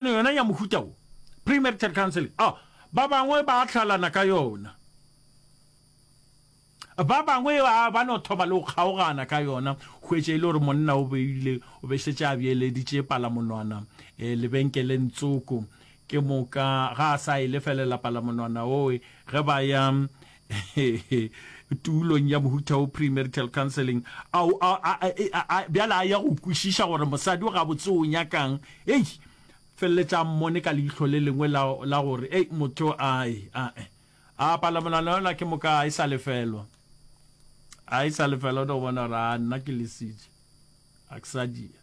Tlhwekišano yona ya mohuta wo, premarital counselling, a ba bangwe ba hlalana ka yona, ba bangwe a ba no thoma le go kgaogana ka yona, hwetše e le gore monna o beile o be šetše a bjeeleditše palamonwana lebenkeleng tsoko, ke moka ga a sa e lefelela palamonwana owe ge ba ya Tulong ya mohuta wo, premarital counselling, a o a a a e a a bjale a ya go kwešiša gore mosadi o gabotse o nyakang. Hei, feleletša a mmone ka leihlo le lengwe la la gore, Hei, motho a e a e a palamolana yola ke moka a e sa lefelwa. A e sa lefelwa, o no bona gore a nna ke lesitše. A ke sa dia.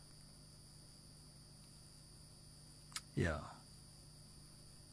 Yeah.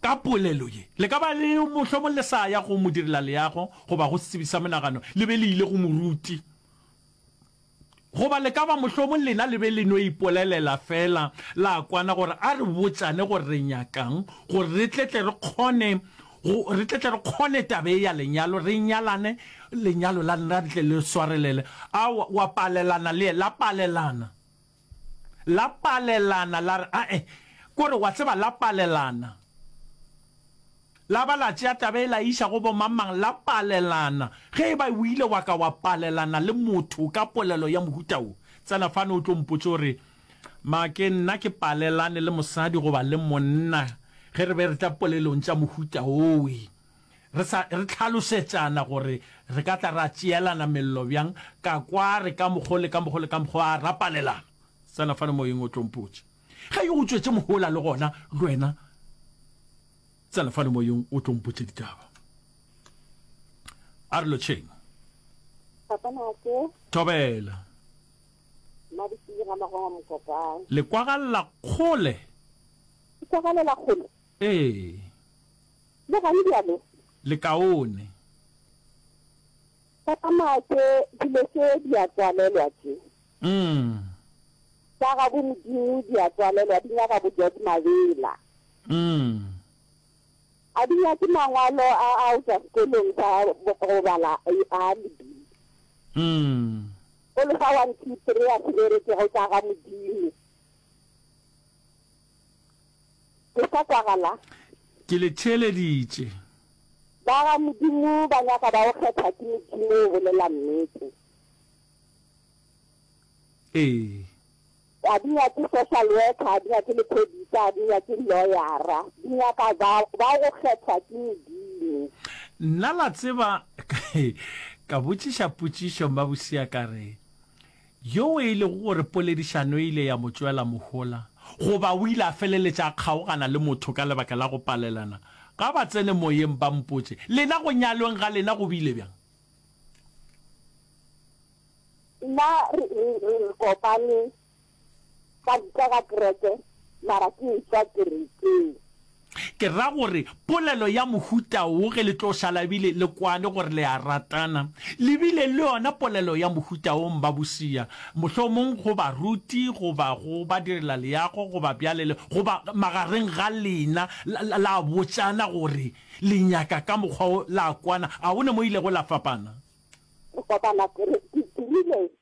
Ka polelo ye, le ka ba le mohlomong le sa ya go modirelaleago goba go setsebi sa monagano le be le ile go moruti. Goba le ka ba mohlomong lena le be le no ipolelela feela la kwana gore a re botšane gore re nyaka'ng gore re tle tle re kgone go re tle tle re kgone taba ye ya lenyalo, re nyalane, lenyalo la lena le tle le swarelele. A wa palelana le la palelana. La palelana, la re, A-e, ke gore, wa tseba, la palelana. La ba la tšea taba e la e iša go bomang-mang, la palelana. Ge e ba o ile wa ka wa palelana le motho ka polelo ya mohuta wo, tsena fano o tlo mpotše o re, Ma, ke nna ke palelane le mosadi goba le monna ge re be re tla polelong tša mohuta wo. Re sa re hlalošetšana gore re ka tla ra tšeelana mello bjang, ka kwa a re ka mokgo le ka mokgo le ka mokgo a ra palelana. Tsena fane Moyeng o tlo mpotše. Ge yo o tšwetše mohola le gona le wena tsena fane Moyeng o tlo mpotše ditaba. A re lotšheng. Papa Nake. Thobela. Mabisile ga mago a mokopang. Le kwagalela kgole. Ke kwagalela kgole? Ee. Le gane bjalo. Lekaone. Ka tsamaya tše, dilo tše di a tswalelwa tše. Umm. Tša gabo Modimo di a tswalelwa, di nyaka bojadi mabela. Umm. A di nyake mangwalo a a o tšwa sekolong sa go bala a lebi. Umm. O le fa one two three a se berekego tša ga Modimo. Le sa kwagala? Ke le theeleditše. Ba ga Modimo ba nyaka ba go kgetha ke Modimo o bolela nnete. Ee. Ga di nyake social worker, ga di nyake lephodisa, ga di nyake lawyer-a. Di nyaka ba ba go kgethwa ke Modimo. Nna la tseba ka botšiša potšišo Mmabosea ka re, Yoo e lego gore poledišano e ile ya mo tšwela mohola, goba o ile a feleletša a kgaogana le motho ka lebaka la go palelana ga batsene-moyeng, ba mpotše, Lena go nyalweng ga lena go bile bjang? Nna re, re, re, re kopane ka, ka ga kereke, mara ke ešwa kerekeng. Ke ra gore polelo ya mohuta wo ge le tlo šala ebile le kwane gore le a ratana, le bile le yona polelo ya mohuta wo mbabosia, mohlomong go baruti goba go badirelaleago goba bjale le, goba magareng ga lena, la, la, la botšana gore le nyaka ka mokgwa wo, la kwana. A go ne mo ilego la fapana? Re kopana, re, re dirile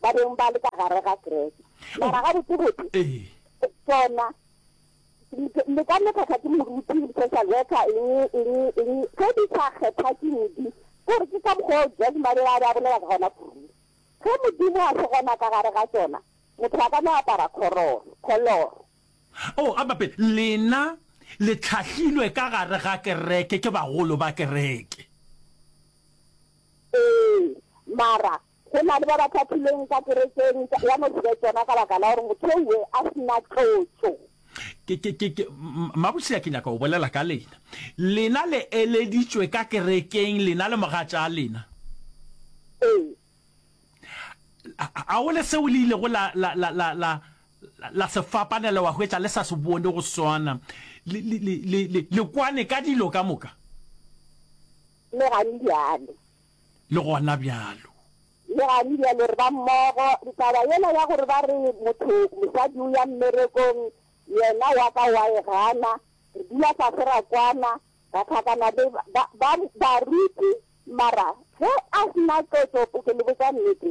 ba beng ba le ka gare ga kereke. Mara gabotsebotse, tšona le ka mekgahla ke moruti, social worker, eng, eng, eng, ge di sa kgetha ke Modimo. Ke gore ke ka mokgwa o Jesu ba be ba be a bolela ka gona kudu. Ge Modimo a se gona ka gare ga tšona, motho a ka no apara kgororo, kholoro. Oh, a bape, lena le tlhahlilwe ka gare ga kereke ke bagolo ba kereke. Ee, mara Go na le ba ba hlahlilweng ka kerekeng ya no se be tsona ka baka la gore motho ewe a se na tlotšo. Ke, ke, ke, ke, Mabusela ke nyaka go bolela ka lena. Lena le eleditšwe ka kerekeng, lena le mogatša lena. Ee. A go le seo le ilego la, la, la, la, la, la se fapanela wa hwetša le sa se bone go swana? Le, le, le, le, le kwane ka dilo ka moka? Mme ga le bjalo. le gona bjalo. Leane bjalo re ba mmogo. Ntaba yela ya gore ba re motho, mosadi o ya mmerekong, yena wa ka wa e gana. Re dula fase ra kwana, ra tlhakana le ba, ba, ba, baruti, mara ge a se na qetšo, ke le botša nnete.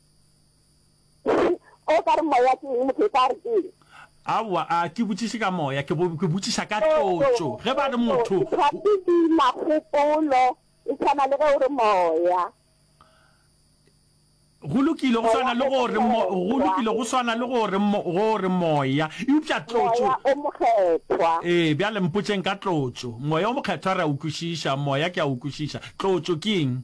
Eng? O ka re moya ke eng? Motho o tla re ke eng? Aowa, a ke botšiše ka moya, ke bo, ke botšiša ka tlotšo. Ge ba re motho. Ke tla sedima kgopolo, e swana le ge o re moya. Go lokile, go swana le go re mo, go lokile, go swana le go re mo, go re moya. Eupša tlotšo. Moya o mokgethwa. Ee, bjale mpotšeng ka tlotšo. Moya o mokgethwa re a o kwešiša, moya ke a o kwešiša. Tlotšo ke eng?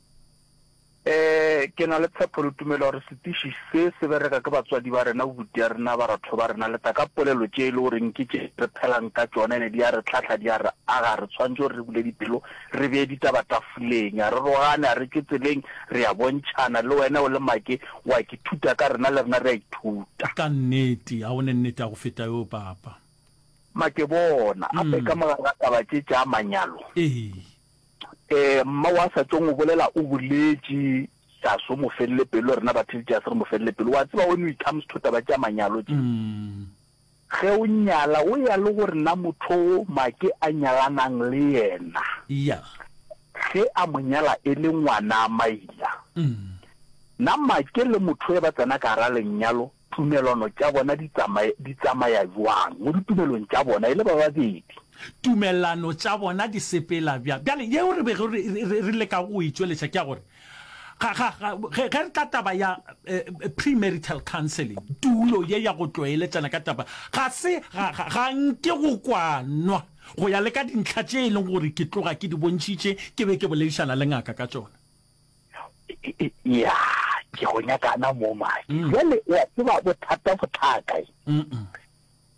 Ee, ke na le tshepo le tumelo gore setiši se se bereka ke batswadi ba rena, bobuti ya rena, baratho ba rena, leta ka polelo tše e le goreng ke tše re phelang ka tšona ene di a re hlahla, di a re aga. Re tshwanetše gore re bule dipelo, re bee ditaba tafoleng, a re rogane, a re tšwe tseleng, re a bontšhana. Le wena o le Make o a ke thuta ka rena, le rena re a ithuta. Ka nnete, a one nnete ya go feta yoo, Papa. Make, bona, gape ka mogala taba tše tša manyalo. Ee. Eh, mma wa sa tšong o bolela o boletši Saso o mo felele pelo, rena ba Tiljas re mo felele pelo. Wa tseba when we comes to taba tša manyalo tše, mm. ge o nyala o ya le gore na motho o make a nyalanang le yena yeah. ge a mo nyala e le ngwana a maila mm. na make le motho e ba tsena ka gara lenyalo Tumelano tša bona di tsamaya, di tsamaya bjang mo ditumelong tša bona e le ba babedi? Tumelano tša bona di sepela bjang? Bjale yeo re bego re, re, re leka go e tšweletša ke ya gore, ga, ga, ga, ge, ge re tla taba ya eh, premarital counseling, tulo ye ya go tlwaeletšana ka taba, ga se, ga, ga, ga nke go kwanwa go ya le ka dintlha tše e leng gore ke tloga ke di bontšhitše ke be ke boledišana le ngaka ka tšona. ya ke go nyakana mo mae mm. jale wa tseba bothata bothaka e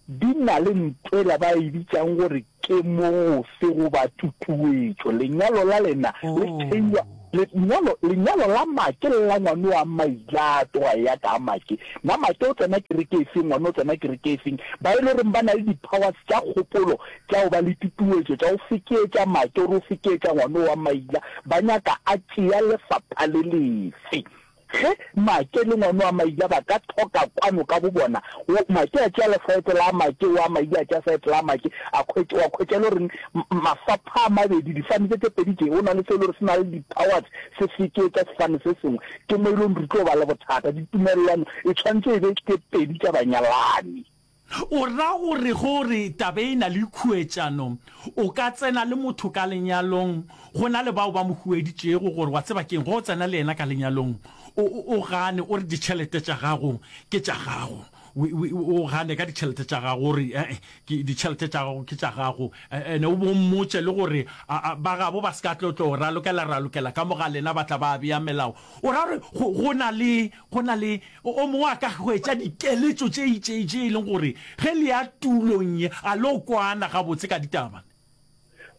di na le ntwela ba e bitsang gore ke mose go ba tutuetso lenyalo la lena oh. le theiwa lenyalo lenyalo la make le la ngwane wa mailato wa ya ka make na make o tsena kereke e feng ngwane o tsena kereke e feng ba e le goreng ba na le di-powers tsa kgopolo tša go ba le tutuetšo, tša go fekeetša matšo gore o fekeetša ngwano wa maila, ba nyaka a tšea lefapha le lefe. Ge Matše le ngwano wa maila ba ka thoka kwano ka bobona, wo Matše a tšea lefaetle la Matše, wo a maila a tšea faetle la Matše, a khwetš, wa khwetša e le gore mafapha a mabedi, difane tše tše pedi tše, go na le se e le gore se na le di-powers, se fekeetša sefane se sengwe, ke mo e leng re tlo ba le bothata. Ditumelelwano e tshwanetše e be tše pedi tša banyalani. O ra gore ge o re taba e na le khuetšano, o ka tsena le motho ka lenyalong go na le bao ba mo hueditšego, gore wa tseba ke'ng, ge o tsena le yena ka lenyalong o, o, o gane, o re ditšhelete tša gago ke tša gago, we, we, o gane ka ditšhelete tša gago, o re, ee, ke, ditšhelete tša gago ke tša gago, and o bo mmotše le gore a, a, ba gabo ba se ka tlo, tlo o ralokela, ralokela ka mo ga lena, ba tla ba bea melao. O ra gore go, go na le Go na le o mongwe a ka hwetša dikeletšo tše itšei tše e leng gore ge le ya tulong ye a lo kwana gabotse ka ditaba.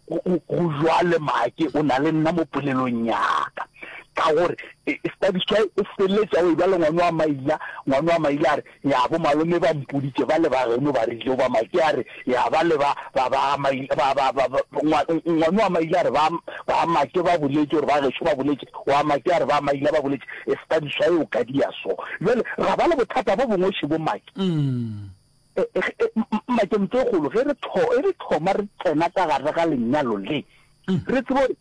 Go bjale Maake o na le nna mo polelong ya ka, ka gore Study Shy o feleletša o e-bjale ngwano wa Maila. Ngwano wa Maila a re, Ya bo malome ba mpoditše ba le ba geno ba re ilo ba ma ke a re ya ba le ba ba ba ma ba ba ba ngwano wa maile a re ba ba ma ke ba boletše gore ba gešo ba boletše wa ma ke a re ba maile ba boletše e se ka diswa e o ka dia so jwale ra ba le bothata bo bongwe še bo make mm. e, e, e, make mpe golo ge re tho e re thoma re tsena ka gare ga lenyalo le mm. re tsebo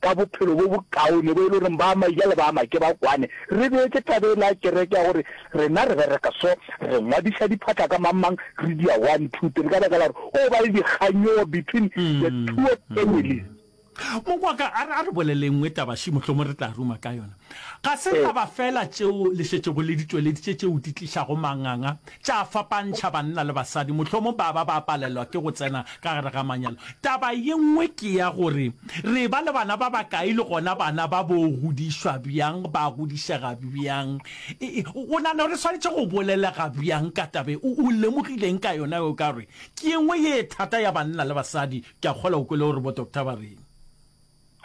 ka bophelo bo bokaone bo e le gore ba maija le ba make ba kwane, re beetše taba e le ya kereke ya gore rena re bereka so, re ngwadiša diphatla ka mang-mang, re di ya one, two, three, ka baka la gore go ba le dikganyogo between the two of families. Mokwaka, a re bolele e nngwe taba, še mohlomong re tla ruma ka yona. Ga se taba feela tšeo le šetšego le di tšweleditše tšeo di tlišago manganga, tša fapantšha banna le basadi, mohlomong ba ba ba palelwa ke go tsena ka gare ga manyalo. Taba ye nngwe ke ya gore re eba le bana ba bakae le gona bana ba bo godišwa bjang, ba godišega bjang, o nagana gore re swanetše go bolelega bjang ka taba ye? O lemogile eng ka yona yeo? Ka gore ke ye nngwe ye thata ya banna le basadi. Ke a kgolwa o kwele gore bo-doctor ba reng.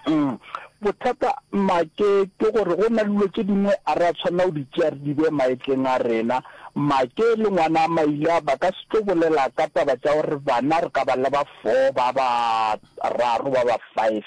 Umm bothata make ke gore go na le dilo tše dingwe a re a tshwanela go di tšea re di bee maetleng a rena. Make le ngwana a Maila ba ka se tlo bolela ka taba tša gore bana re ka ba le ba four ba ba raro ba ba five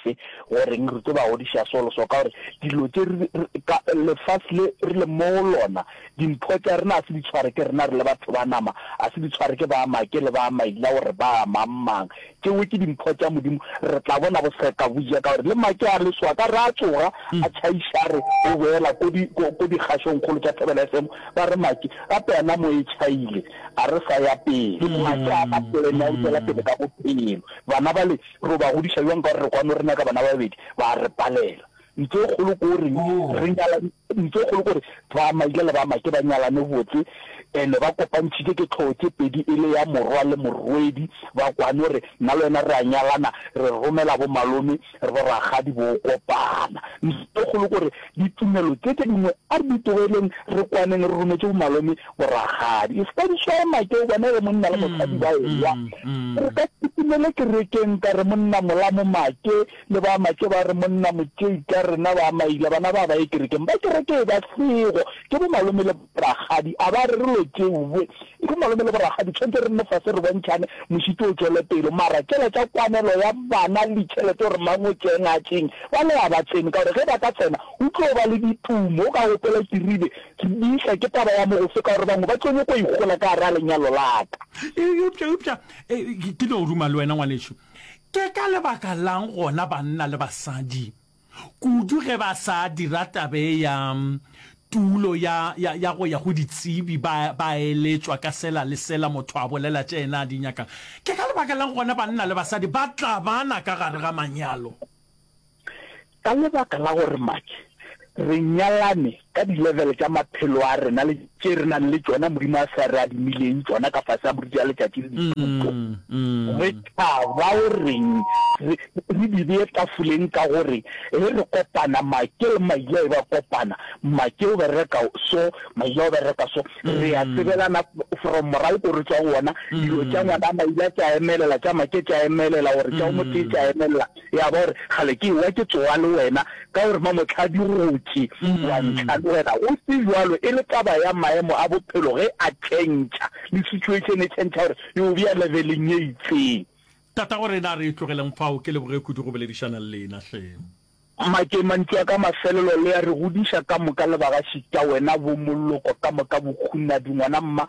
goreng re tlo ba godiša so le so ka gore dilo tše re ka lefase le re le mo go lona dimpho tša rena a se di tshware ke rena re le batho ba nama a se di tshware ke ba make le ba Maila gore ba mang mang tšewe ke dimpho tša Modimo, re tla bona boseka bo ja ka gore le make a leswa ka re a tsoga a tšhaiša re o boela ko di ko ko dikgašong kgolo tša Thobela FM ba re make gape ana mo e tšhaile a re sa ya pele make a ka polena o tsela pele ka bophelo bana ba le ro ba godiša jwang ka gore re kwano re nyaka bana ba babedi ba re palela Ntho e kgolo ko reng re nyala ntho e kgolo ko re ba maile le ba make ba nyalane botse ene ba kopantšhitše ke tlhogo tše pedi e le ya morwa le morwedi ba kwane gore nna le wena re a nyalana re romela bo malome re bo ragadi bo kopana ntho e kgolo ko re ditumelo tse tse dingwe a re di tlogeleng re kwaneng re rometše bo malome bo ragadi e se ka di swaya make o bona re monna le mosadi ba ewa re ka ke tumele kerekeng ka re monna mola mo make Le ba Matšo ba re, Monna Motšei, ka rena ba Maila, bana ba ba ye kerekeng. Ba kereke e ba sego, ke bo malome le borakgadi. A ba re re lo tšeoe e bo malome le borakgadi, tshwanetse re nne fase re bontšhane, mošito o tšwele pele. Mara tšela tša kwanelo ya bana le ditšhelete gore mang o tšee ngatšeng, bale a ba tsene, ka gore ge ba ka tsena go tlo ba le ditumo. O ka opela ke ribe, Re dihla ke taba ya mogofe, ka gore bangwe ba tlo nyoko ikgola ka gare ga lenyalo la ka. Eupša, eupša, ke no ruma le wena, ngwanešu. Ke ka lebaka la'ng gona banna le basadi, kudu ge ba sa dira tabe ya tulo ya, ya, ya go ya go ditsebi, ba, ba eletšwa ka sela le sela motho a bolela tše yena a di nyakago? Ke ka lebaka la'ng gona banna le basadi ba tlabana ka gare ga manyalo? Ka lebaka la gore Maki, re nyalane ka di-level tša maphelo a rena le tše re nang le tšona Modimo a sa re adimileng tšona ka fase ga borutegi a letšatši le dithuto, re tla ba o reng re re di bee tafoleng ka gore ge re kopana Maki le Maila e ba kopana, Maki o bereka so, Maila o bereka so, re a tsebelana from morago ko re tšwa gona, dilo tša ngwana Maila tša emelela tša Maki tša emelela gore tša o motee tša emelela. ya ba gore kgale ke ewa ke tsowa le wena ka gore mamotlhadi gotši wa ntlha le wena go se jwalo e le taba ya maemo a bophelo ge a tšhentšha le situation e tšhentšha gore yo bja leveleng ye itseng Tata gore na re tlogeleng fao ke leboge kudu go boledišana le lena hle. Make mantšu a ka mafelelo le a re godiša ka moka le bagašita wena bo Moloko ka moka Bokhunadi ngwana mma.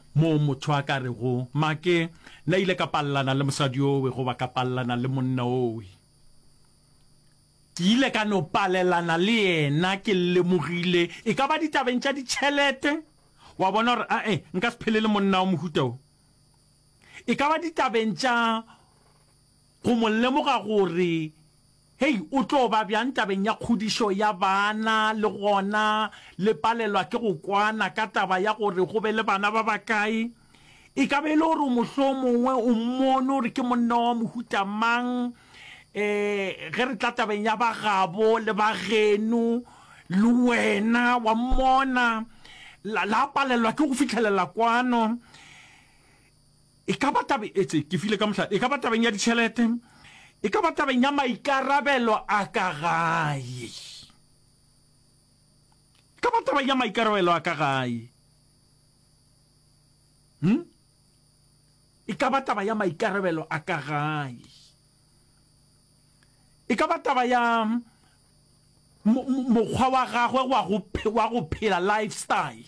Moo motho a ka rego, Maake, nna ile ka palelana le mosadi owe goba ka palelana le monna owe. Ke ile ka no palelana le yena, ke lemogile, e ka ba ditabeng tša ditšhelete, wa bona gore, a-e, nka se phele le monna wa mohuta wo. E ka ba ditabeng tša Go mo lemoga gore, hei, o tlo ba bjang tabeng ya kgodišo ya bana, le gona le palelwa ke go kwana ka taba ya gore go be le bana ba bakae. E ka be e le gore mohlomongwe o mmone gore ke monna wa mohuta mang. Um, ge re tla tabeng ya bagabo le bageno, le wena wa mmona, la, la palelwa ke go fihlelela kwano. E ka ba tabe etše ke file ka mohlala, e ka ba tabeng ya ditšhelete, e ka ba tabeng ya maikarabelo a ka gae, e ka ba tabeng ya maikarabelo a ka gae, hm, e ka ba taba ya maikarabelo a ka gae, e ka ba taba ya mokgwa wa gagwe wa go phela, lifestyle.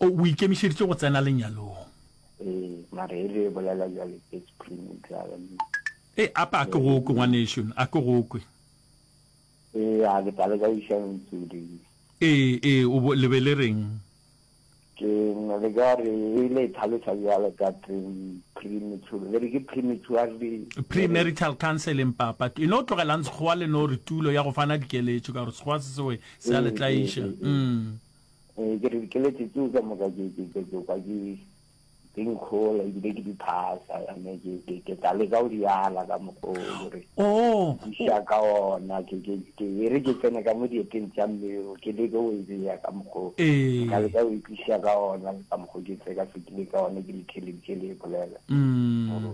O ikemišeditše go tsena lenyalong? Ee, mara e re e bolela bjale ke screen e dlala mo. Ee, apa a ke go kwe, ngwanešu, a ke go kwe. Ee, a ke tale ka iša ntsudi. Ee, ee, o bo, le be le reng? Ke le ka re, e ile e tlhaloša bjale ka teng, premature, le re ke prematurely. Premarital counseling, papa. E no tlogelang Sekgowa le no re tulo ya go fana dikeletšo, ka gore Sekgowa se sewe se a le tlaiša. Ee, ee, ee. Eh, ke re dikelete tseo ka moka ke ke ke ke kwa ke ke nkgola ebile ke di phasa yane ke ke ke tla le ka o di ala ka mogolo re oh ya ka ona ke ke ke e re ke tsene ka mo dieteng tsa mmeo ke le go e ya ka mogolo eh ka le ka o ikisha ka ona ka mogolo ke tse ka fitile ka ona ke le thelele ke le bolela mm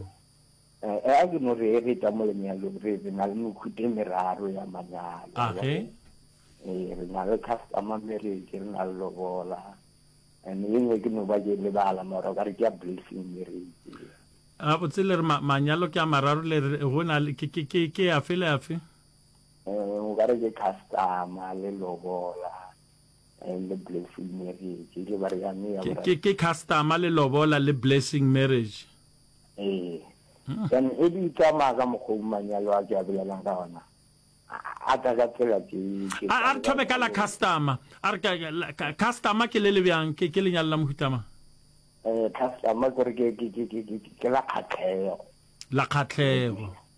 Ee, a ke no re e re tla mo lenyalong re re na le mekhute meraro ya manyalo. A ge? Ee, re na le customer marriage, re na le lobola. And e nngwe ke no ba ke lebala mara o ka re ke ya blessing marriage. A botse le re manyalo ke a mararo le re go na ke ke ke ke ya fela ya fe? Eh, o ka re ke customer le lobola and le blessing marriage. Ke ba re ya me ya. Ke ke customer le lobola le blessing marriage. ee then e di tsamaya ka mokgwa o manyalo a ke a bolelang ka ona a ka ka tsela ke a re thome ka la customer a re customer ke le le bjang ke ke lenyalo la mohutama eh customer ke re ke ke ke ke ke la kgatlhego la kgatlhego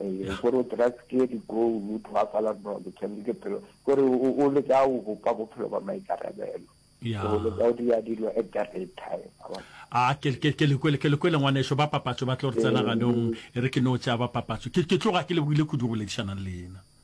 ee gore o trustye di-goal o tlhoafala nolo tshwanetse ke phelo gore o leka o bopa bophelo ba maikarabelo o leka o dira dilo at the right time a ke le kwele ngwaneso ba papatso ba tlo re tsena ganong e re ke no tšea ba papatso ke tloga ke le buile kudu go boledišanang le ena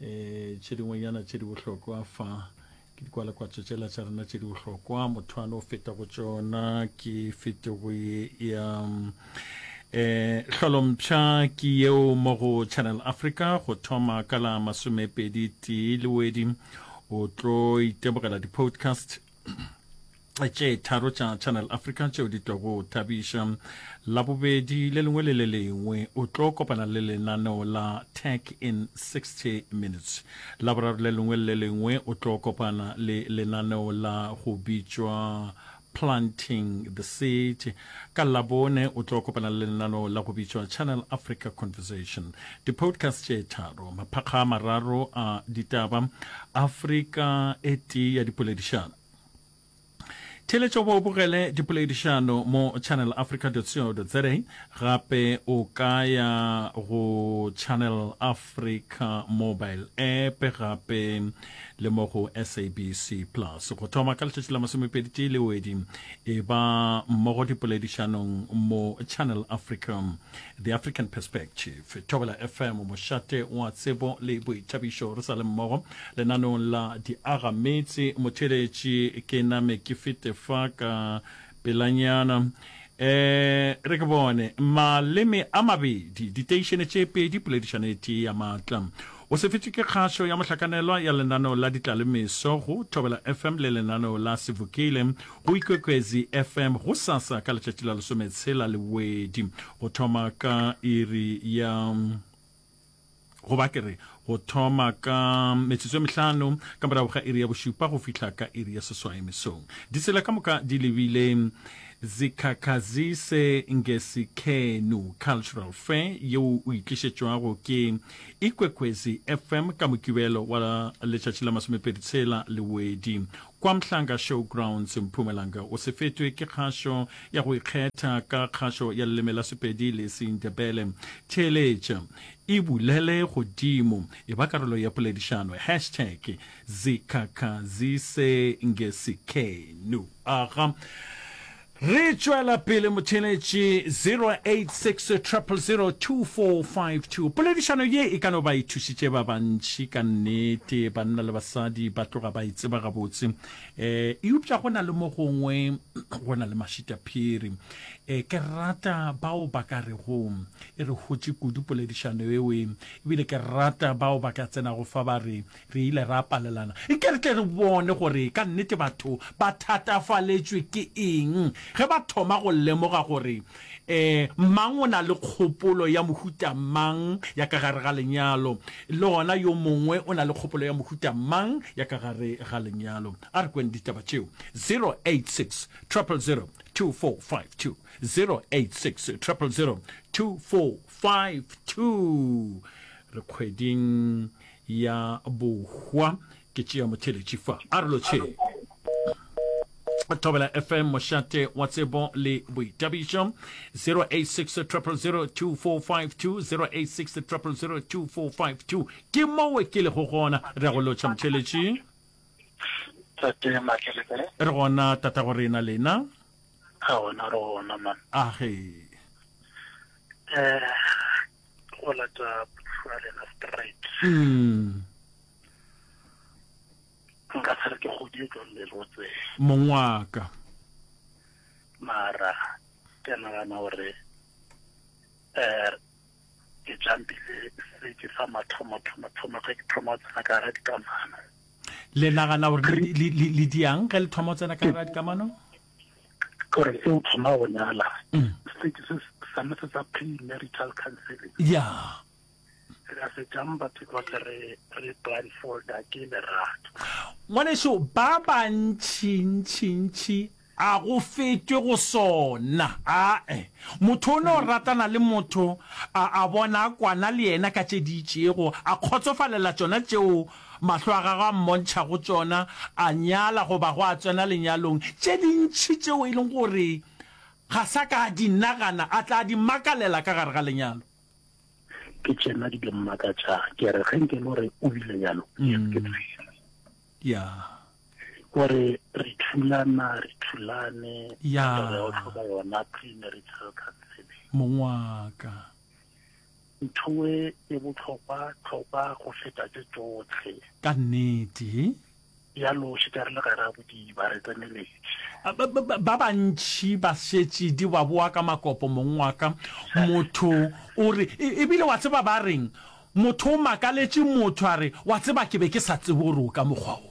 E, tše dingwenyana tše di bohlokwa fa ke dikwalakwatso tšela tša rena tše di bohlokwa mothoane o feta go tšona ke fetogo ye ya eh hlolompša ke yeo mo go channel africa go thoma ka la masomepedi tee le wedi o tlo itebogela di-podcast tše tharo tša Channel Africa tšeo di tlo go thabiša labobedi le lengwe le le lengwe o tlo kopana le lenaneo la Tech in 60 Minutes. Laboraro le lengwe le le lengwe o tlo kopana le lenaneo la go bitšwa Planting the Seed. Ka Labone o tlo kopana le lenaneo la go bitšwa Channel Africa Conversation. Di-podcast tše tharo, maphakga a mararo a ditaba, Afrika e tee ya dipoledišano. Theeletšo Bo bogele dipoledišano mo channelafrica.co.za Gape o ka ya go Channel Africa mobile app gape le mo go SABC Plus. Go thoma ka letšatši la masomepedi tee le wedi e ba mmogo dipoledišanong mo Channel Africa. The African Perspective, Thobela FM, Mošate wa Tsebo le Boithabišo re sa le mmogo lenanong la Diaga Meetse. Motheeletši ke name ke fete fa ka pelanyana. E re ke bone maleme a mabedi, diteišene tše pedi, poledišano e tee ya maatla. O se fetše ke kgašo ya mohlakanelwa ya lenaneo la Ditlalemeso go Thobela FM le lenaneo la Sevukile. Go Ikwekwezi FM gosasa ka letšatši la lesometshela le bobedi go thoma ka iri ya go ba ke re go thoma ka metsotso e mehlano ka morago ga iri ya bošupa go fihla ka iri ya seswai mesong ditsela ka moka di lebile zikhakhazise ngesikhenu cultural fair yeo o itlišetšwago ke ikwekwezi fm ka mokibelo wa letšatši la masomepedi tshela lewedi Kwa Mhlanga Showgrounds, Mpumalanga o se fetwe ke kgašo ya go ikgetha ka kgašo ya leleme la Sepedi le Sendebele. Theeletša, e bulele godimo, e ba karolo ya poledišano. Hashtag Zikhakhazise Ngesikenu. Aga. Re tšwela pele motheeletši 0860002452. Poledišano ye e ka no ba e thušitše ba bantši ka nnete. Banna le basadi ba tloga ba e tseba gabotse. Um eupša go na le mo gongwe go na le mašitaphiri. Um ke rata bao ba ka rego e re hotše kudu poledišano eo, ebile ke rata bao ba ka tsenago fa ba re Re ile ra palelana. Nke re tle re bone gore ka nnete batho ba thatafaletšwe ke eng ge ba thoma go lemoga gore mang o na le kgopolo ya mohuta mang ya ka gare ga lenyalo le gona yo mongwe o na le kgopolo ya mohuta mang ya ka gare ga lenyalo. A re kweng ditaba tšeo. 086 000 2452 086 000 2452 Re kgweding ya bohwa ke tšea motheletši fa a re lotšheng thobela fm mošate wa tsebo le boitabišo 0860002452 ke mowe ke lego gona re ya go lotšha motheletši re gona tata go rena lena ga gona re gona man age eh go lata phuthua rena straight mm. nka tshare ke godie jwa mmerotse mong wa ka mara ke nagana gore um ke jampile seke sa mathomathomathomo ge ke thoma go tsena ka gara dikamano le nagana gore le diang ge le thoma go tsena ka gara dikamano gore se o thoma go nyala mm. se ke se same se sa premarital counseling ya re se jang batho ba ke re re blindfold ke lerato ngwaneso ba bantši ntši ntši a go fetwe go sona ae motho o ne o ratana le motho a bona kwana le yena ka tše di itšego a kgotsofalela tsona tšeo Mahlo a gagwe a mmontšha go tšona, a nyala goba gwa tsena lenyalong, tše dintši tšeo e leng gore ga sa ka a di nagana, a tla di makalela ka gare ga lenyalo. Ke tšena di di mmakatšago. Ke re, ge nke lo re o bile bjalo, ke tshwere. Ya. O re, re thulana, re thulane. Ya. Re o hloka yona premarital counseling. Mong wa ka. Nthoe e bohlokwa hlokwa go feta tše tšohle. Ka nnete. Ya loši ka re le gare a bodiba re tseneletše. Ba bantši ba šetše di ba boa ka makopo mong wa ka. Motho o re, E, ebile wa tseba ba reng? Motho o makaletše motho a re, Wa tseba ke be ke sa tsebe gore o ka mokgwa wo.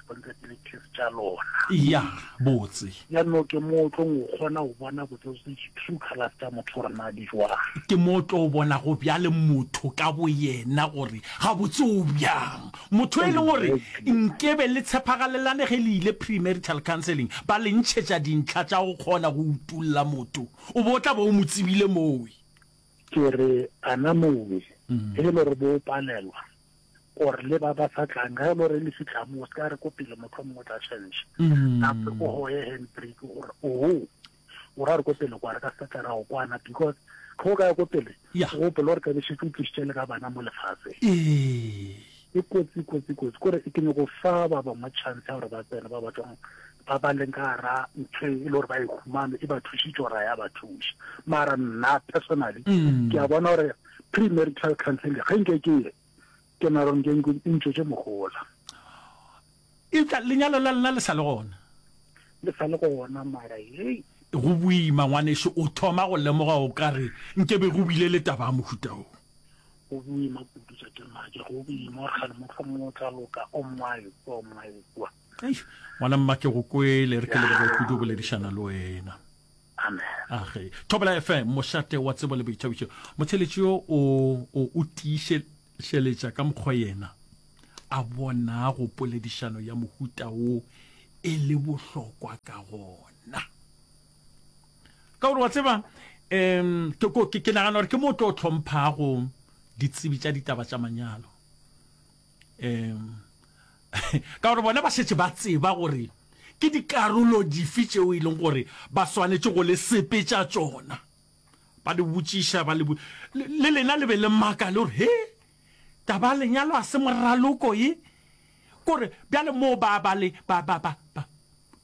responsibilities tša lona ya botse ya no ke mo o tlong o kgona go bona botse true colors tša motho gore na di jwang ke mo o tlo o bona go bjale motho ka bo yena gore ga botse o bjang motho e leng gore nkebe le tshepagalelane ge le ile premarital counseling ba le ntšhetša dintlha tša go kgona go utulla motho o bo o tla ba o mo tsebile mowe ke re ana mowe mm. e le gore bo o palelwa or le ba ba sa tlang ga e le gore le fitlha mo o se ka re ko pele motlho mongwe o tla change mm. gape o goye handbrake gore oo oh, o ra re ko pele kwa re ka se tlera go kwana because tlho o ka ya ko pele o gopole gore kabešetse o tlisitše le ka bana mo lefatshe e kotsi kotsi kotsi kore ke nyoko fa ba bangwe chance ya gore ba tsene ba batlong ba ba leng ka gara ntho e le gore ba e humane e ba thusitse gore ya ba thuša mara nna personally mm. ke a bona gore Premarital counseling ga nke ke ye ke naro nke e ntšwetše mogola. Eupša lenyalo la lena le sa le gona? Le sa le gona mara hei. Go boima ngwaneso o thoma go lemoga o ka re nke be go bile le taba ya mohuta wo. Go boima kudu tša ke mmaje go boima gore gane mohlomong o tla loka o mmae kwa o mmae kwa. Eish, ngwana mma ke go kwele, re ke lebelele kudu boledišana le wena. Amen. Age, Thobela FM, mošate wa tsebo le boithabišo. Motheletši yo o, o, o tiišeletša ka mokgwa yena a bonago poledišano ya mohuta wo e le bohlokwa ka gona. Ka gore wa tseba, em, ke, ko- ke, ke nagana gore ke mo o tlo hlomphago ditsebi tša ditaba tša manyalo. um ka gore bona ba šetše ba tseba gore ke dikarolo dife tšeo e leng gore ba swanetše go le sepe tša tšona ba le botšiša ba le le lena le be le maka le gore he taba lenyalo a se moraloko ye kore bjale moo ba ba le ba ba ba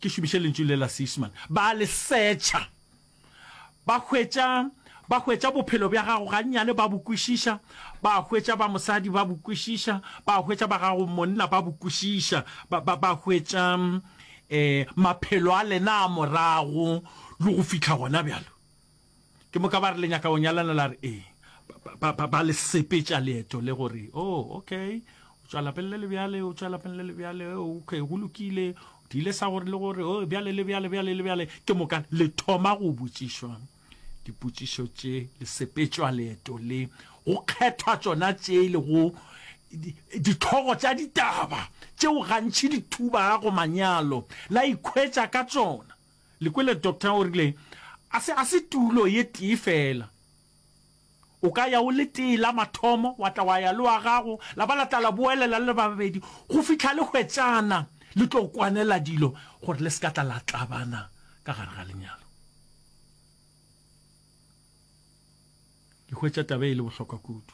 ke šomiše lentšu le la seisman ba le setšha Ba hwetša, ba hwetša bophelo bja gago gannyane, ba bo kwešiša. Ba hwetša ba mosadi ba bo kwešiša, ba hwetša ba gago monna ba bo kwešiša, ba, ba, ba hwetša eh, maphelo a lena a morago le go fihla gona bjalo. Ke moka ba re le nyaka go nyalana, la re ee. Ba, ba, ba, ba le sepetša leeto le gore, oh, okay, o tšwa lapeng le le bjale, o tšwa lapeng le le bjale, okay, go lokile, Di ile sa gore le gore, Oh, bjale le bjale, bjale le bjale, ke moka le thoma go botšišwa dipotšišo tše, le sepetšwa leeto le, go kgethwa tšona tše le go dithlogo tša ditaba tšeo gantši di thubago manyalo, la ikhwetša ka tšona. Le kwele, Doctor o rile, A se, a se tulo ye tee feela. O ka ya o le tee la mathomo, wa tla wa ya le wa gago, la ba la tla la boelela le le babedi, go fihla le hwetšana le tlo kwanela dilo gore le se ka tla la tlabana ka gare ga lenyalo. Le hwetša taba e le bohlokwa kudu.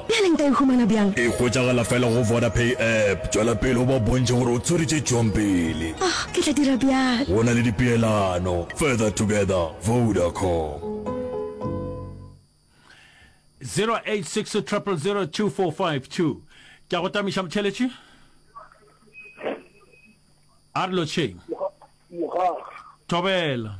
Bjale nka e humana bjang? E hwetšagala fela go Vodapay app. Tšwela pele o ba bontšhe gore o tswere tše tšwang pele. Oh, ke tla dira bjalo. Go na le dipeelano. Further together, Vodacom. 0860002452 Ke a go tamiša motheletši. A re lotšheng. Mogaka. Thobela.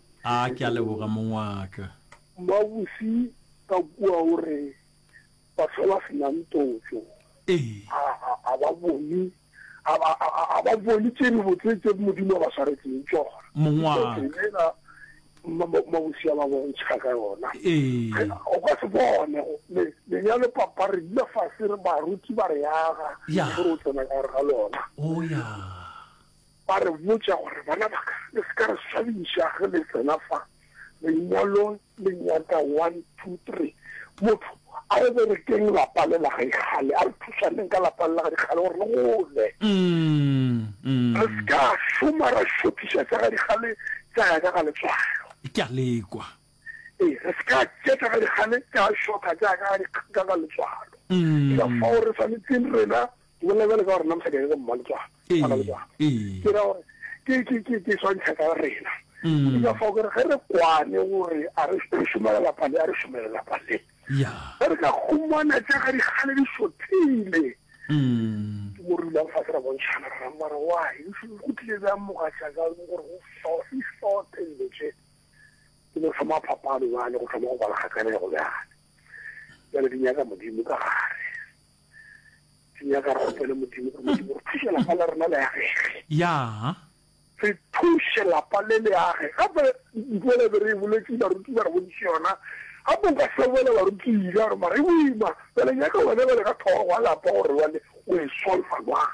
A, Ke a leboga, mong wa ka. Mmabose ka kua o re, Batho ba ba se nang totšo Ee. ga, ga, ga ba bone, ga, ga, ga, ga, ga ba bone tše dibotse tše Modimo a ba swaretšeng tšona. Mong wa ka. Totšo yela mma, mma, Mmabose a ba bontšha ka yona. Ee. O ka se bone go, le, lenyalo papa re dula fase re, baruti ba re aga, Ya. gore o tsena ka gare ga lona. O, ya. Ba re botša gore, Bana ba ka, le se ka re swabiša ge le tsena fa lengwalong le nyaka one, two, three. Motho a re berekeng lapa le la gaikgale, a re thušaneng ka lapa le la gaikgale gore le gole. Re se ka šoma ra šothiša tša gaikgale tša ya ka ga letswalo. Ke a lekwa. Ee, re se ka tša tša gaikgale tša šotha tša ya ka ga letswalo. Ke ka fao re swanetseng rena Ke bolela bjale ka gore nna mosadi ake go mma letswalo, Ee, bana letswalo. ee. Ke ra gore ke ke ke ke swantšha ka rena. Mm. Ke ka fao ke re ge re kwane gore a re re šomela lapa le, a re šomele lapa le. Ya. Ge re ka humana tša ga dikgale di šothile, Mm. ke mo re dulang fatshe ra bontšhana ra mma re why di šo- go tlile bjang mogatša ka gore go so- di šothe dilo tše. Ke mo thoma phapano bjale go thoma go bala kgakanegelo bjale. Bjale di nyaka Modimo ka gare. ke nyaka re gopele modimo gore modimo re thuše lapa le rena le agege ya re thuše lapa le le age gape ntole be re e boletse baruti ba re bodise yona gape o ka sebela baruti ile gore mara e boima bele nyaka wena bele ka thoro wa lapa gore wane o e solfa jwang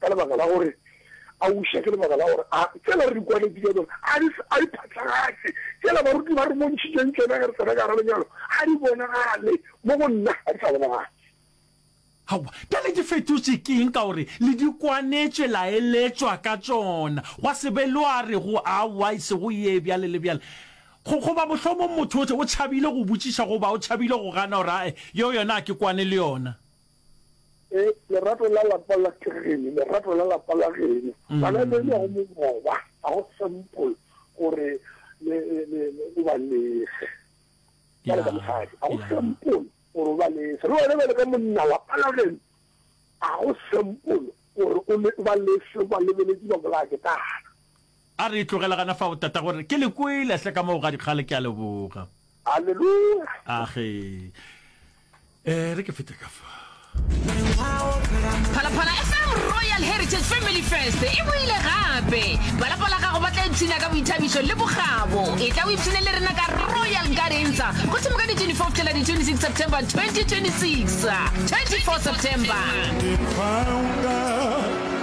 Ka lebaka la gore a uša, ke lebaka la gore a tsela re di kwanetše ka tšona a di a di phatlagatše, tsela baruti ba re bontšhitšeng tšona ge re tsena ka gara lenyalo ga di bonagale, mo go nna ga di sa bonagala. Aowa, bjale ke fetotše ke eng ka gore le di kwanetše la eletšwa ka tšona, gwa se be lo a rego aowa e sego ye bjale le bjale. Go, goba mohlomong motho o tšhabile go botšiša goba o tšhabile go gana gore ae, yeo yona a ke kwane le yona. Eh, lerato la lapa la kegene, lerato la lapa la geno. Mm. Bana ba ile go mogoba, ga go simple gore le le le o ba lese. Ba le ka mosadi, ga go simple gore o ba lese. Re wena ba le ka monna lapa la geno. Ga go simple gore o le ba lese ba lebeletse ba bolaya ke tana. A re, Tlogela gana fao, tatago, re, ke le kwele hle ka moo ga dikgale, ke a leboga. Aleluya! Age. E re ke fete ka fa. Phalaphala FM Royal Heritage Family Fest e boile gape. Ba lapa la gago ba tla ipshina ka boithabišo le bokgabo. E tla o ipshine le rena ka Royal Garenza go thoma ka di 24 fihlela di 26 September 2026. 24 September.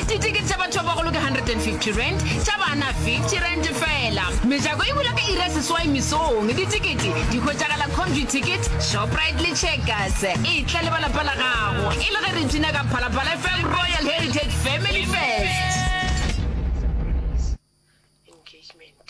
Ditikete tša batho ba bagolo ke 150 rand, tša bana 50 rand fela. Mejako e bula ka iri ya seswai mesong. Ditikete di hwetšagala Comview Ticket, Shoprite le Checkers. E tla le ba lapa la gago e le ge re tuna ka Phalaphala FM Royal Heritage Family Fest. engagement.